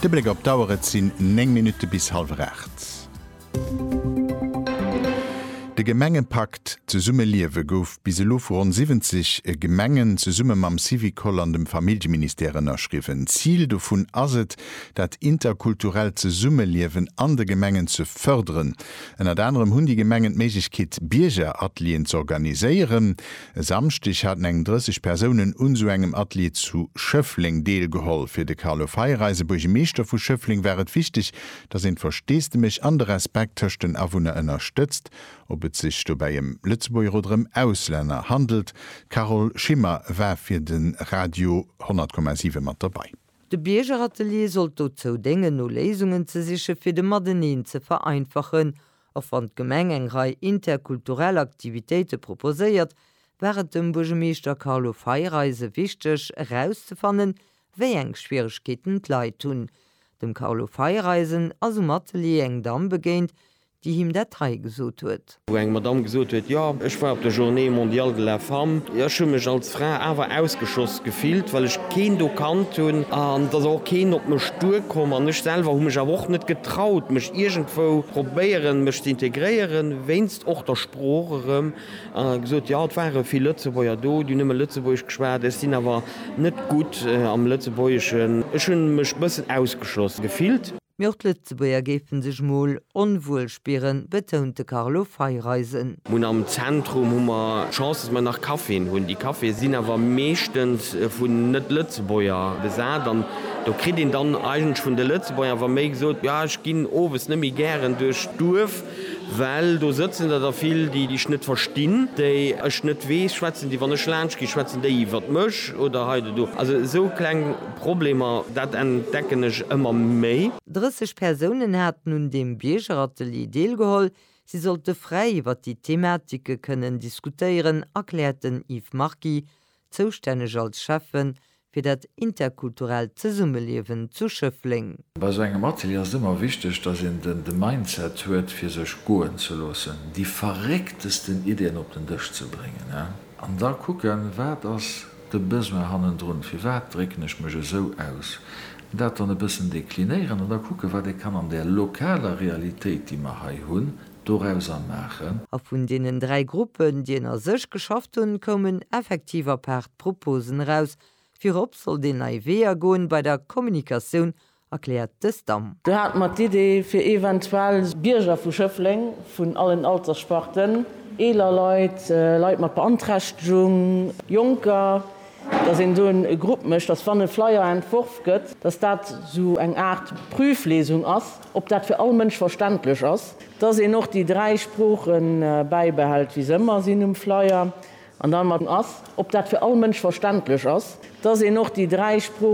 De Bléck op d'Auer, et sinn 9 Minutte bis hallwer 8. De Gemengepakt Zesumme liewe gouf bis elo vu ronn 70 Gemengen zesumme mam Syvicol an dem Familljeministère ënnerschriwwen. Zil dovun ass et, dat interkulturellt Zesummeliewen an de Gemengen ze fërderen. Ënnert anerem hunn déi Gemengen d'Méiglechkeet, Biergeratelieren z'organiséieren. E Samschdeg haten eng 30 Persounen un sou engem Atelier zu Schëffleng deelgeholl. Fir de Carlo Feiereisen, Buergemeeschter vu Schëffleng, war et wichteg, datt een d'Versteesdemech an de Respekt tëscht den Awunner ënnerstëtzt, ob et sech dobäi ëm Lëtzebuerger oder ëm Auslänner handelt. D'Carole Schimmer war fir de Radio 10,7 mat dobäi. De Biergeratelier sollt dozou déngen, no Léisungen ze sichen, fir de Mateneen ze vereinfachen Och wann d'Gemeng eng Rei interkulturell Aktivitéite proposéiert, war et dem Buergemeeschter Carlo Feireise wichteg erauszefannen, wéi eng Schwieregkeeten d'Leit hunn. Dem Carlo Feireisen ass um Atelier eng Damm begéint, déi him dat hei gesot huet. Wou eng Madamm gesot huet, jo, ech war op der Journée mondiale de la femme, ech hu mech als. D'Fra awer ausgeschoss gefillt, well ech keen do kannt hunn, an et ass och keen op mech duer komm, an ech selwer hu mech awer och net getraut, mech iergendwou probéieren, mech ze integréieren, wéinst och der Sprooch erëm, an gesot, jo, et ware vill Lëtzebuerger do, déi nëmme Lëtzebuergesch geschwat, ech sinn awer net gutt am Lëtzebuergeschen, ech hunn mech bëssen ausgeschloss gefillt. Mee och d'Lëtzebuerger géife sech mol onwuel spieren, betount de Carlo Feiereisen. Mun am Zentrum hu mer d'Chance, dass mer nach Caféen hunn. Déi Caféë sinn awer meeschtens vun Net-Lëtzebuerger besat an do kritt een dann eigentlech vun de Lëtzebuerger awer méi gesot, jo ech ginn owes net méi gären duerch d'Duerf, well do sëtzen der da vill, déi ech net verstinn, déi ech net weess, schwätzen déi, wann ech laanscht ginn, schwätzen déi iwwert mech oder hei oder do. Also esou kleng Problemer, dat entdecken ech ëmmer méi. 30 Persounen haten un deem Biergeratelier deelgeholl. Si sollte fräi iwwer déi Thematike kënnen diskutéieren, erkläert den Yves Marky, zoustänneg als Schäffe fir dat interkulturellt Zesummeliewen zu Schëffleng. Bei esou engem Atelier ass et ëmmer wichteg, dass een de Mindset huet, fir sech goen ze loossen, déi verrécktesten Iddien op den Dësch ze bréngen an da kucken, wat ass de Besoin hannendrun, firwat drécken ech mech esou aus, dat dann e bëssen deklinéieren an da kucken, wat ee kann an där lokaler Realitéit, déi mer hei hunn, dorauser maachen. A vun deenen dräi Gruppen, déi ënner sech geschafft hunn, koumen effektiv apaart Proposen eraus. Virop sollt een nei Weeër goen bei der Kommunikatioun erkläert de Stam. Do hate mer d'Idee, fir eventuell Bierger vu Schëffleng vun allen Alterssparten, eeler Leit, Leit mat Beanträchtegung, Jonker, dass een do e Grupp mécht, dass, wann e Flyer entworf gëtt, dass dat esou eng Aart Prüflesung ass, ob dat fir all Mënsch verständlech ass, dass een och déi dräi Sprooche bäibehält, wéi se ëmmer sinn um Flyer, an dann mat ass, ob dat fir all Mënsch verständlech ass, dass een och déi dräi Sprooche.